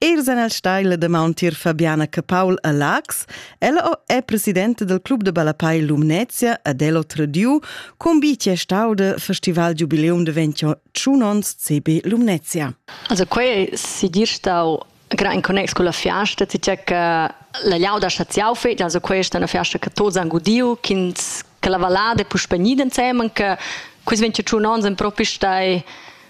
Els han el stai la damaun tier Fabiana Capaul a Laax. Ella è presidenta del club de ballapei Lumnezia ad el otra diu, cum bi ti è stau de festival giubileum de 21 ons CB Lumnezia. Also quei si dir stau gra in connex con la fiasta, ti c'è che la liauda staziau fetg, also questa è una fiasta che tots han gudiu, ch'ins che la valada puspegni insemen, che questi 21 ons en propi stai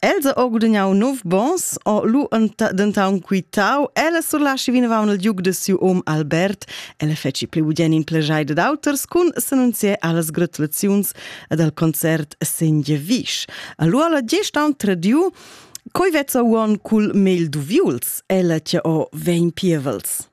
Els ha gudagnau nov bons, o lu dentaun quitau, ella surlaschi vinavon il giug de siu um Albert, ella feci pli budien in plejai dad auters cun s'annunzier allas gratulaziuns ed al concert Senghevisch. Allora gest aun tradiu Coi vezza uon cul mel duviuls, ella che o vegn pievels.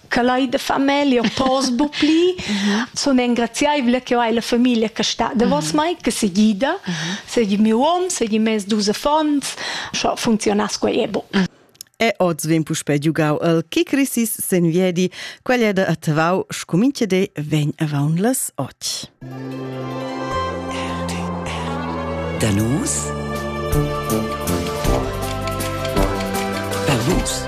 che lai da famiglia pos bu pli sun engraziaivla che hai la famiglia che sta davos mai che se gida segi miu hom segi mes dus affons scho funzionas quei e bu E oz vegn puspè giugau el Kikrisis sen viedi, quella da a Tavau, scumince de vegn avaun las och. Danus Danus